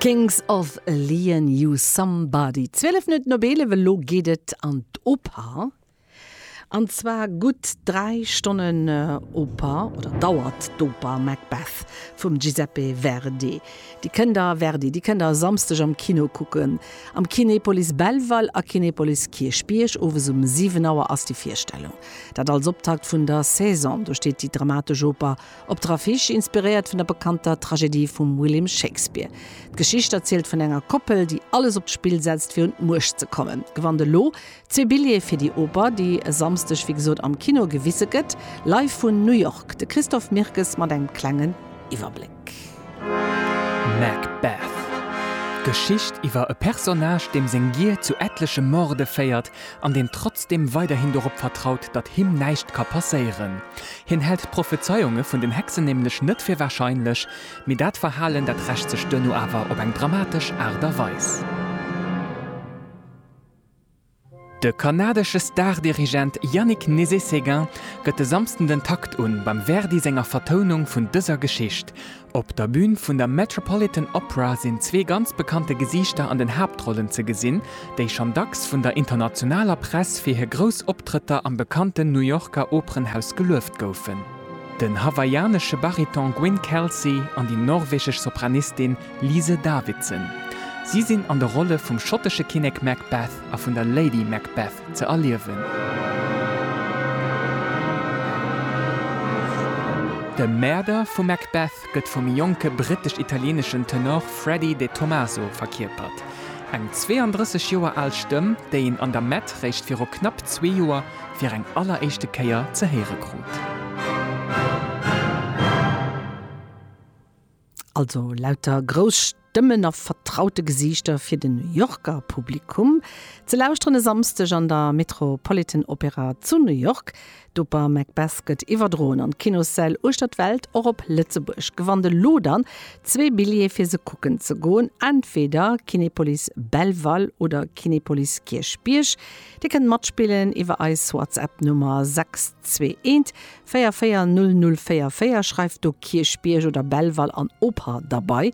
Kings of Leon You Somebody, 12 Minutten op 11, elo geet et an d'Oper. An zwar gutt 3 Stonnen Oper, oder dauert d'Oper Macbeth vum Giuseppe Verdi. Dir kënnt der, Verdi, déi kënnt der e Samsdeg am Kino kucken, am Kinepolis Belval a Kinepolis Kierchbierg. Owes um 7 Auer ass déi Virstellung. Dat als Optakt vun der Saison. Do steet déi dramatesch Oper Op der Affiche, inspiréiert vun der bekannter Tragedie vum William Shakespeare. D'Geschicht erzielt vun enger Koppel, déi alles op d'Spill setzt fir un d'Muecht ze kommen. Gewannt elo zwee Billjeeë fir déi Oper, déi e Samsdeg wéi gesot am Kino gewise gëtt. Live vun New York, de Christophe Mirkes mat engem klengen Iwwerbléck. Macbeth. D'Geschicht iwwer e Personnage, deem seng Gier zu etleche Morde féiert an deen trotzdeem weiderhin dorop vertraut, datt him näischt ka passéieren. Hien hält d'Prophezeiunge vun den Hexen nämlech net fir warscheinlech, mee dat Verhalen, dat rächt sech duerno awer op eng dramatesch Aart a Weis. De kanadesche Stardirigent Yannick Nézet-Séguin gëtt e Samsden den Takt un beim Verdi senger Vertounung vun dëser Geschicht. Op der Bün vun der Metropolitan Opera sinn zwee ganz bekannte Gesiichter an den Haaptrollen ze gesinn, déi schonn dacks vun der internationaler Press fir hir grouss Optrëtter am bekannten New Yorker Operenhaus gelueft goufen. Den hawaiianesche Bariton Gwyn Kelsey an déi norwegesch Sopranistin Lise Davidson. Si sinn an de Rolle vum schottesche Kinnek Macbeth a vun der Lady Macbeth ze erliewen. De Mäerder vum Macbeth gëtt vum jonke brittesch-italieeneschen Tenor Freddie De Tomaso verkierpert. Eng 32 Joer al Stëmm, déi een an der Met réischt viru knapp zwee Joer fir eng alleréischte Kéier ze héiere krut. Also lauter grouss Stëmmen a vertraute Gesiichter fir de New Yorker Publikum. Ze lauschteren e Samsdeg an der Metropolitan Opera zu New York. D'Oper Macbeth gëtt iwwerdroen an d'Kinossäll uechter d'Welt, och op Lëtzebuerg. Gewannt elo dann zwee Billjeeë fir se kucken ze goen, entweder Kinepolis Belval oder Kinepolis Kierchbierg. Dir kënnt matspillen iwwer eis WhatsApp-Nummer 621 44004 schreift do Kierchbierg oder Belval an Oper derbei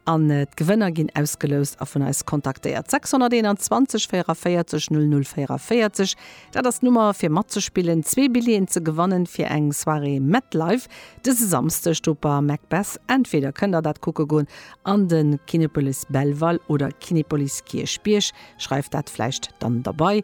an d'Gewënner ginn ausgeloust a vun eis kontaktéiert. 621 44 00 44, dat ass d'Nummer fir matzespillen, zwee Billjeeën ze gewannen fir eng Soirée Metlife dëse Samsdeg do par Macbeth. Entweder kënnt der dat kucke goen an de Kinepolis Belval oder Kinepolis Kierchbierg, schreift dat vläicht dann derbei